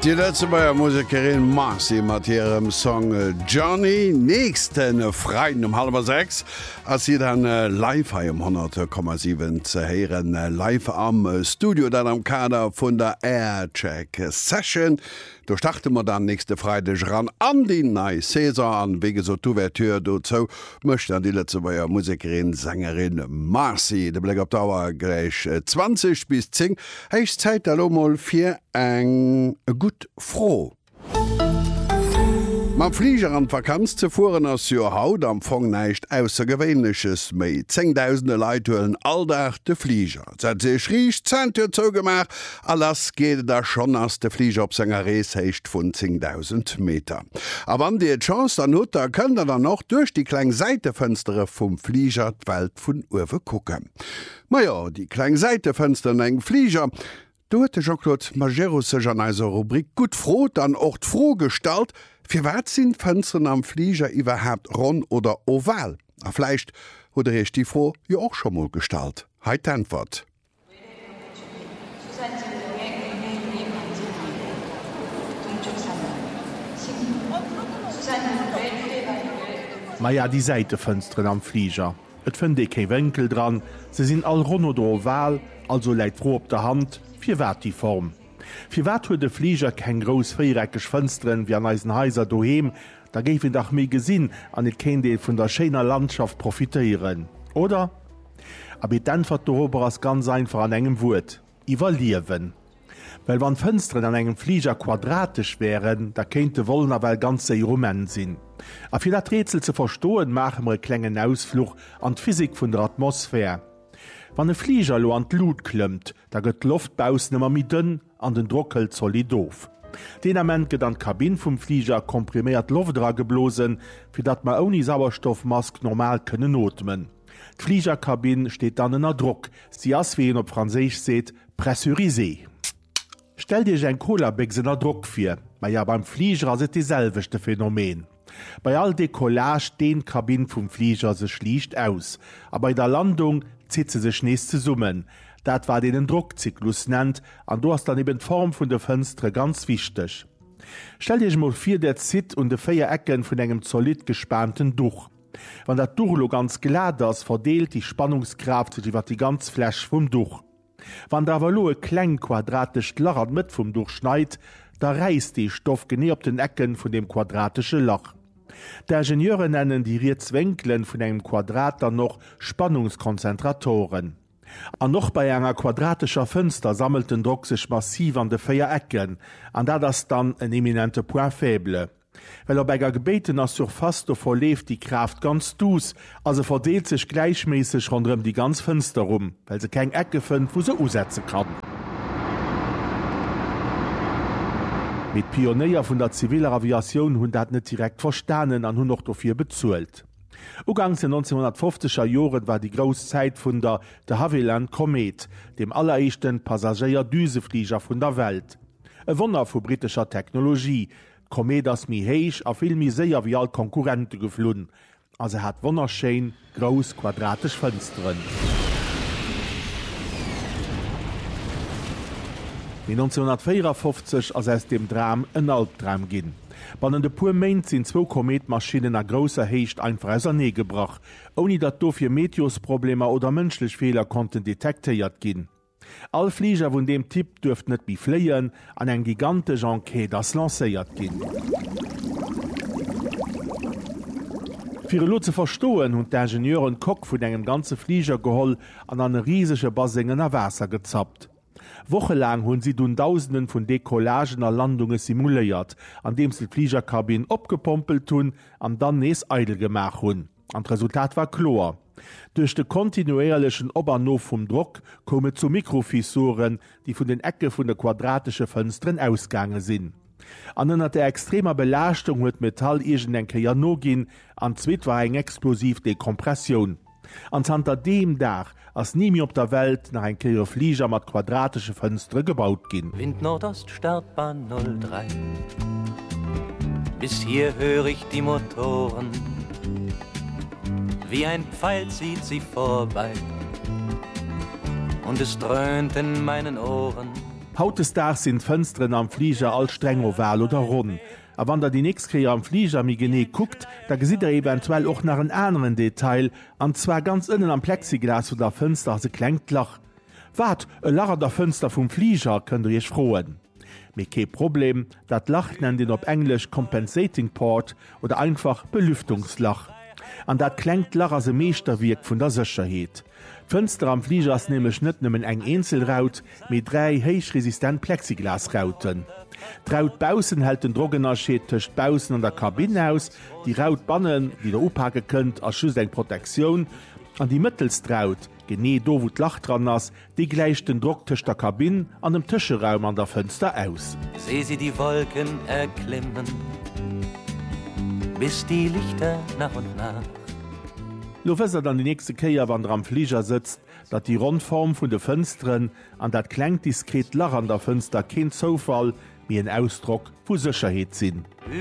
Di Lëtzebuerger Musekerin Marcy mat hirem Song Johnny. Nächsten Freiden um halwer 6 ass si dann live hei um 100,7 ze héieren, live am Studio, dat am Kader vun der Aircheck Session. Do starte mer dann nächste Freideg eran an déi nei Saison an wéi gesot d'Ouverture dozou mécht dann déi Lëtzebuerger Musekerin, Sängerin Marcy. De Bléck op d'Auer, gläich 20 bis 10. Héich Zäit da lo mol fir eng gutt Fro. Mam Fliger an d'Vakanz ze fueren ass jo haut am Fong näischt Aussergewéinleches méi. Zéngdausende Leit huelen all Dag de Fliger. Et sett sech riicht, Zäintür zougemaach a lass geet et. A schonn ass de Fliger op senger Rees, Héicht vun 10.000 Meter. A wann dir d'Chance dann hutt, da kënnt der dann och duerch déi kleng Säitefënstere vum Fliger d'Welt vun uewe kucken. Majo, déi kleng Säitefënsteren an engem Fliger, Do huet de Jean-Claude Majerus sech an eiser Rubrik Gutt frot an och d'Fro gestallt, Firwat sinn d'Fënsteren am Fliger iwwerhaapt ronn oder oval? A vläicht hutt der iech déi Fro jo och scho mol gestallt. Hei d'Äntwert. Maja déi Säitefënsteren am Fliger. Et fënnt ee kéi Wénkel dran, se sinn all ronn oder oval, also läit d'Fro op der Hand, firwat déi Form? Firwat huet e Fliger keng grouss véiereckeg Fënsteren wéi an eisen Haiser doheem? Da géif een dach méi gesinn an et kéint ee vun der schéiner Landschaft profitéieren, oder? Abee, d'Äntwert dorobber ass ganz einfach an engem Wuert, iwwerliewen. Well wann d'Fënsteren an engem Fliger quadratesch wären, da kéint de Vol nawell ganz séier um Enn sinn. A fir dat Rätsel ze verstoen, maache mer e klengen Ausfluch an d'Physik vun der Atmosphär. Wann e Fliger elo an d'Lut klëmmt, da gëtt d'Loft baussen ëmmer méi dënn an den Drock hëlt zolidd of. Deen Ament gëtt an d'Kabinn vum Fliger kompriméiert Loft erageblosen, fir datt mer ouni Sauerstoffmask normal kënnen ootmen. D'Fligerkabinn steet dann ënner Drock, si ass, wéi een op Franséisch seet, pressurisée. Stellt Iech eng Colabécks ënner Drock vir. Maja, beim Fliger ass et dee selwechte Phenomen. Bei all Decollage deent d'Kabinn vum Fliger sech liicht aus, a bei der Landung zitt se sech nees zesummen, dat wat een en Drockzyklus nennt, an do ass dann eben d'Form vun de Fënstere ganz wichteg. Stellt Iech emol vir, Där zitt un de 4 Ecke vun engem zolidd gespaanten Duch. Wann dat Duch elo ganz glat ass, verdeelt déi Spannungskraaft sech iwwer déi ganz Fläch vum Duch. Wann der awer elo e kleng quadratescht Lach an d'Mëtt vum Duch schneit, da räisst dee Stoff genee op den Ecken vun deem quadratesche Lach. D'Ingenieuren nennen déi riets Wénkelen vun engem Quadrat dann och Spannungskonzentratoren. An och bei enger quadratescher Fënster sammelt den Drock sech massiv an de 4 Ecken, an dat ass dann en eminente Point faible. Well op enger gebéitener Surface do verleeft déi Kraaft ganz duuss a se verdeelt sech gläichméisseg ronderëm déi ganz Fënster rum, well se keng Ecke fënnt, wou se usetze kann. Mee d'Pionéier vun der ziviller Aviatioun hunn dat net direkt verstanen an hunn och dofir bezuelt. Uganks den 1950 er Joren war déi grouss Zäit vun der de Havilland Komet, dem alleréischten Passagéier-Düsefliger vun der Welt. E Wonner vu brittescher Technologie, D'Komeet ass méi héich a vill méi séier wéi all d'Konkurrente geflunn a se hat wonnerschéin, grouss, quadratesch Fënsteren. Mee 1954 ass aus deem Dram en Albdram ginn. Bannent e puer Méint sinn zwou Komeetmaschinnen a grousser Héicht einfach ausernee gebrach, ouni datt dofir Meteosproblemer oder mënschlech Feeler konnten detektéiert ginn. All Fliger vun deem Typ duerft net méi fléien an eng gigantesch Enquête ass lancéiert ginn. Fir elo ze verstoen, hunn d'Ingenieuren d'Coque vun engem ganze Fliger geholl an an e risege Baseng ënner Waasser gezappt. Wochelaang hunn si dunn Dausenden vun Decollagen a Landunge simuléiert, andeems se d'Fligerkabinn opgepompelt hunn an dann nees eidel gemaach hunn. An d'Resultat war kloer, Duerch de kontinuéierlechen Op an Of vum Drock koum et zu Mikrofissuren, déi vun den Ecke vun de quadratesche Fënsteren ausgaange sinn. An ënner der extremer Belaaschtung huet d'Metall iergendeng Kéier noginn, an d'zweet war eng explosiv Dekompressioun. An zanter deem Dag Ass ni méi op der Welt nach eng Kéier e Fliger mat quadratesche Fënstere gebaut ginn. Wind Nordost, Startbahn 03. Bis hier hör ich die Motoren, wie ein Pfeil zieht sie vorbei und es dröhnt in meinen Ohren. Hautdesdaags sinn d'Fënsteren am Fliger all streng oval oder ronn. A wann der déi nächst Kéier am Fliger méi genee kuckt, da gesitt der eventuell och nach en aneren Detail, An zwar ganz ënnen am Plexiglas vun der Fënster ass e klengt Lach. Wat, e Lach an der Fënster vum Fliger? kënnt der iech froen. Mee kee Problem, dat Lach nennt een op Englesch Compensating Port oder einfach Belüftungslach. An dat klengt Lach ass e Meeschterwierk vun der Sécherheet. D'Fënster am Fliger ass nämlech net nëmmen eng eenzel Raut, mee dräi héichresistent Plexiglasrauten. D'Raut baussen hält den Drockennerscheed tëscht baussen an der Kabinn aus, déi Raut bannen, déi Der upake kënnt, ass just eng Protektioun, an déi mëttelst Raut, genee do wou d'Lach dran ass, déi gläicht den Drock tëscht der Kabinn an dem Tëscheraum an der Fënster aus. Seh sie die Wolken erklimmen, bis die Lichter nach und nach. Lo wësst Der dann déi nächste Kéier, wann Der am Fliger sëtzt, Datt déi ronn Form vun de Fënsteren an dat klengt diskret Lach an der Fënster keen Zoufall, mee en Ausdrock vu Sécherheet sinn.